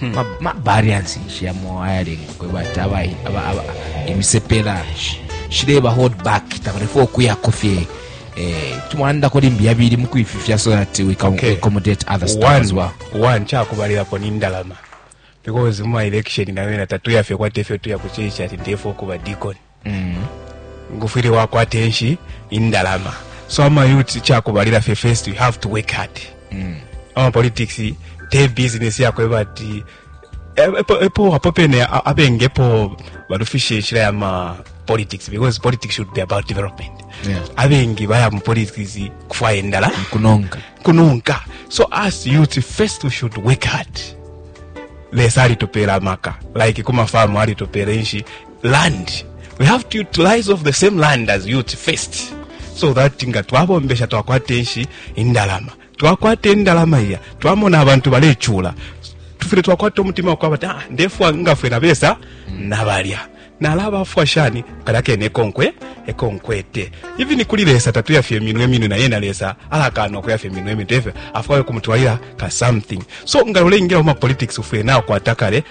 hmm. mabariance nshi yamo ayalenga kweba ati imisepela shileba hold back tabalefua okuyako fye eh, tumwanandako limbi yabili mu kwififya so that we can okay. accommodate other stuff one, as well one kyakubalilapo nindalama because mu election nayo na tatuyafye kwate fyo tuya kucheicha ati ndefo kuba deacon mm. ngufwile wakwata enshi indalama so ama youth chakubalira fe first we have to work hard mm. ama politics te business yakwe bati epo epo apo pene abengepo balufishe nshira ya ma politics because politics should be about development yeah. abengi baya mu politics kufwaya endala kunonka kunonka so as youth first we should work hard lesa alitopera maka like kuma famu alitopera inshi land we have to utilize of the same land as youth first so that nga twabombesha twakwata enshi indalama twakwata indalama iya twamona abantu balecula tufile twakwata omutima wakwaba ti ah, ndefwa ngafwe nabesa nabalya nalabafwa shani kala kene ekonkwe ekonkwete even kuli lesa tatuyafya eminwe eminwe naye na lesa alakaana okuyafya eminwe eminwe tefyo afwayo kumutwalira ka something so nga loleingira mu mapolitics ufwire nakwata kale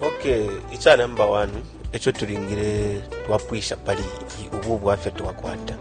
okay ica number one eco tulingile twapwisha pali i- ubu bwafya twakwata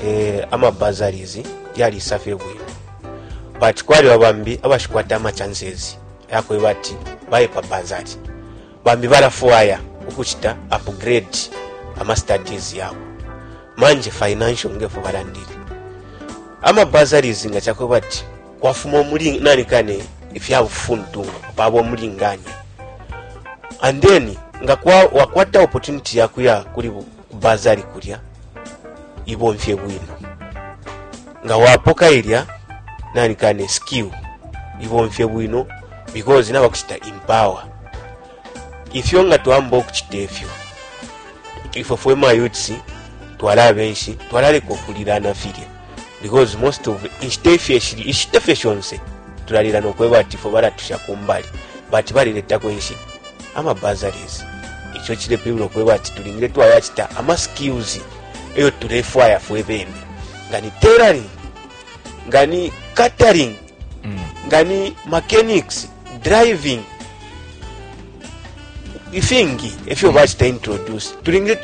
eh, amabazaries yalisa fye bwino but kwaliba bambi abashikwata amachances yakweba ati baye pa bazari bambi balafwaya ukucita upgrade amastudies yabo manje financial ngefu balandile amabazaries nga cakweba ati Kwafuma umulinganya, nani kane ifya bufuntungu paba umulinganya. And then nga kwa wakwata opportunity ya kuya kuli bazari kulya ibomfye bwino. Nga wapoka ilya nani kane skill ibomfye bwino because naba kuchita empower. Ifyo nga twamba okuchita ifyo. Ifyo fwe mayutsi twala benshi twala leko kulira na filya. because most of inshita ifyo eshili ishita fye shonse tulalila nokweba ati fo balatusha kumbali but balileta kwenshi ama bazaries icho chile pibula okweba ati tulingile twaya chita ama skills eyo tulefwaya fwe bene ngani tailoring ngani catering mm. ngani mechanics driving ifingi efyo mm. bachita introduce tulingile twa